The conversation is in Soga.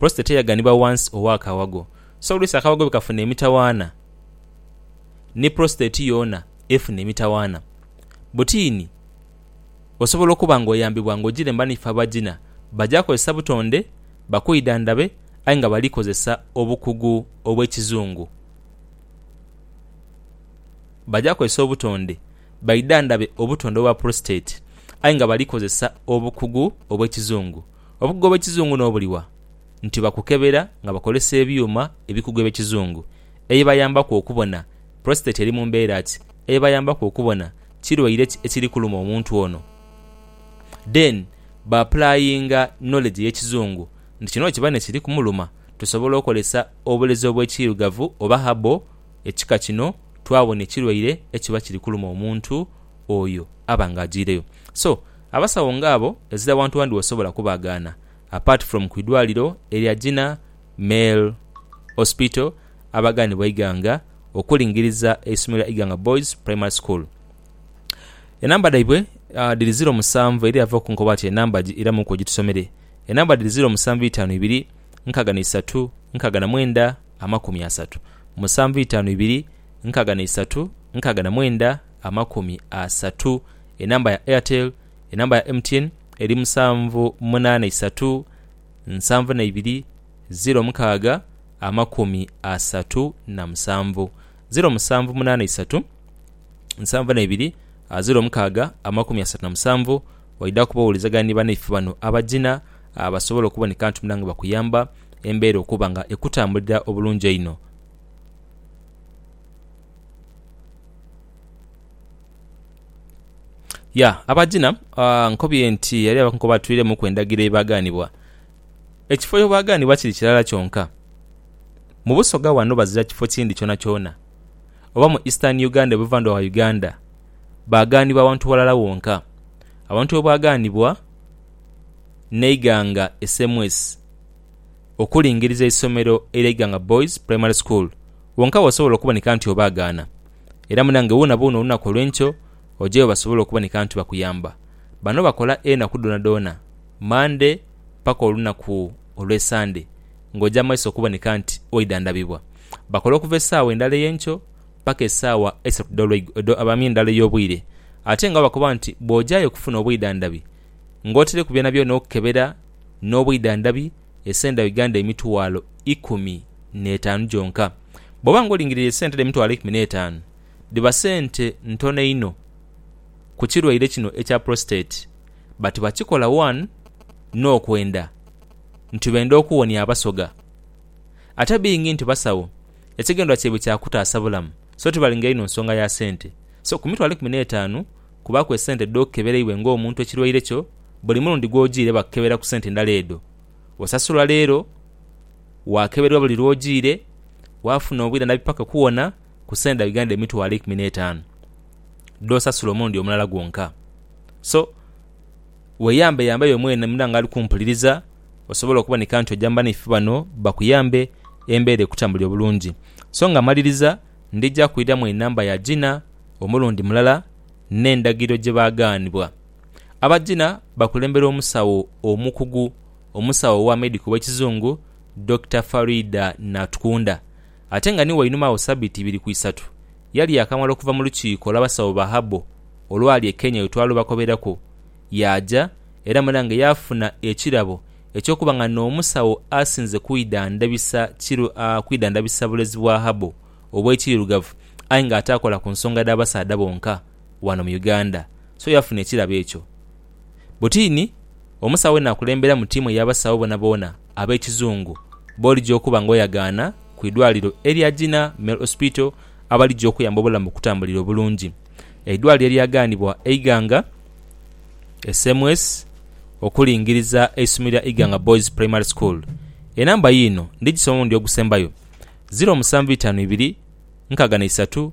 Prostate eyaganibwa wansi owa kawago so oluisi akawago bwekafuna emitawaana ni prostate yoona efuna emitawaana. Butiini osobola okuba nga oyambibwa nga ojilemba n'ife abagina baja kozesa butonde bakwidhandhabe aye nga bali kozesa obukugu obw'ekizungu. Baja kozesa obutonde baidhandhabe obutonde obwa prostate aye nga bali kozesa obukugu obw'ekizungu. Obukugu obw'ekizungu n'obuliwa? Nti bakukebera nga bakozesa ebyuma ebikugu eby'ekizungu ebibayambaku okubona prostate eri mu mbeera ki, ebibayambaku okubona kirwaire ki ekiri kuluma omuntu ono. Then ba applyinga knowledge ey'ekizungu nti kino bwekiba nekiri kumuluma tusobola okozesa obulezi obw'ekiirugavu oba herbal Ekika kino twabona ekirwaire ekiba kiri kuluma omuntu oyo aba nga ajiireyo. So, abasawo nga abo ezira wantu wandi wosobola kubaagaana apart from ku idwaliro erya Gina Male Hospital abagaanibwa Iganga okulingiriza eisomero lya Iganga Boys Primary School. Enamba dhaibwe dhiri ziro musanvu era yava okunkoba ati enamba gi iramuku ogitusomere. Enamba dhiri ziro musanvu itaanu ibiri nkaaga na isatu nkaaga na mwenda amakumi asatu musanvu itaanu ibiri nkaga na isatu nkaga na mwenda amakumi asatu enamba ya Airtel enamba ya MTN eri musanvu munana isatu nsanvu na ibiri ziro mukaaga amakumi asatu na musanvu ziro musanvu munana isatu nsanvu na ibiri ziro mukaaga amakumi asatu na musanvu waidha kuba owulizagana ni banaife bano abajina basobole okuboneka nti munange bakuyamba embeera okuba nga ekutambulira obulungi einho. Ya, abajina nkobye nti eriyo abakunku abatwiremuku endagiro edhibagaanibwa. Ekifo ye baagaanibwa kiri kirala kyonka. Mu Busoga wano bazira kifo kindi kyonakyona, oba mu Eastern Uganda, Buvandhuba wa Uganda, baagaanibwa awantu walala wonka. Awantu we baagaanibwa, neighanga SMS. okulingiriza eisomero erya Iganga Boys Primary School wonka wasobola okuboneka nti obaagaana. Era munange woonaboona olunaku olw'enkyo ojeyo basobole okuboneka nti bakuyamba. Bano bakola enaku dhoonadhoona, Mande paka olunaku olw'Esande ng'oja mu maiso okuboneka nti waidhandhabibwa. Bakola okuva esaawa endala ey'enkyo paka esaawa eisatu edho abamye endala ey'obwire ate nga bakoba nti bwojayo okufuna obwidhandhabi ng'otaireku byonabyona okukebera n'obwidhandhabi esente dha Uganda emitwalo ikumi n'etaanu gyonka. Bw'oba ng'olingiriire esente dhino emitwalo ikumi n'etaanu, dhiba sente ntono inho ku kirwaire kino ekya Prostate but bakikola one n'okwenda nti benda okuwonia Abasoga. Ate being nti basawo, ekigendererwa kyaibwe kya kutaasa bulamu so tibalinga inho nsonga ya sente. So ku mitwalo ikumi n'etaanu kubaaku esente dh'okeberaibwe ng'omuntu ekirwaire kyo Buli mulundi gw'ojiire bakukebera ku sente ndala edho osasulwa leero, waakeberwa buli lw'ojiire, waafuna obwire ndhabi paka okuwona ku sente dha Uganda emitwalo eikumi n'etaanu dh'osasula omulundi omulala gwonka. So, weyambeyambe yo mwene muna nga ali kumpuliriza osobole okuboneka nti oja mu banaife bano bakuyambe embeera ekutambulire obulungi. So nga mmaliriza, ndija kwidhamu enamba ya Gina omulundi mulala n'endagiriro gye baagaanibwa. Abagina bakulemberwa omusawo omukugu omusawo owa medical ow'ekizungu Dokita Faridah Natkunda ate nga ni wainuma agho sabiti ibiri ku isatu yali yaakamala okuva mu lukiiko olw'abasawo ba herbal olwali e Kenya wetwalubakoberaku yaaja era mwena nga yaafuna ekirabo eky'okuba nga n'omusawo asinze kwidhandabisa kiru kwidhandabisa bulezi bwa herbal obw'ekiirugavu aye nga ataakola ku nsonga dha basaadha bonka. wano mu Uganda so yafuna ekirabo ekyo. Butini omusawo we naakulembera mu tiimu ey'abasawo boonaboona ab'ekizungu b'oligya okuba ng'oyagaana ku idwaliro erya Jinnah Male Hospital abaligya okuyamba obulamu bukutambulire obulungi. Eidwaliro eryagaanibwa Eiganga SMS okulingiriza eisomero lya Iganga Boys Primary School. Enamba yiino ndigisomamu ndi ogusembayo, ziro musanvu itaanu ibiri, nkaaga na isatu,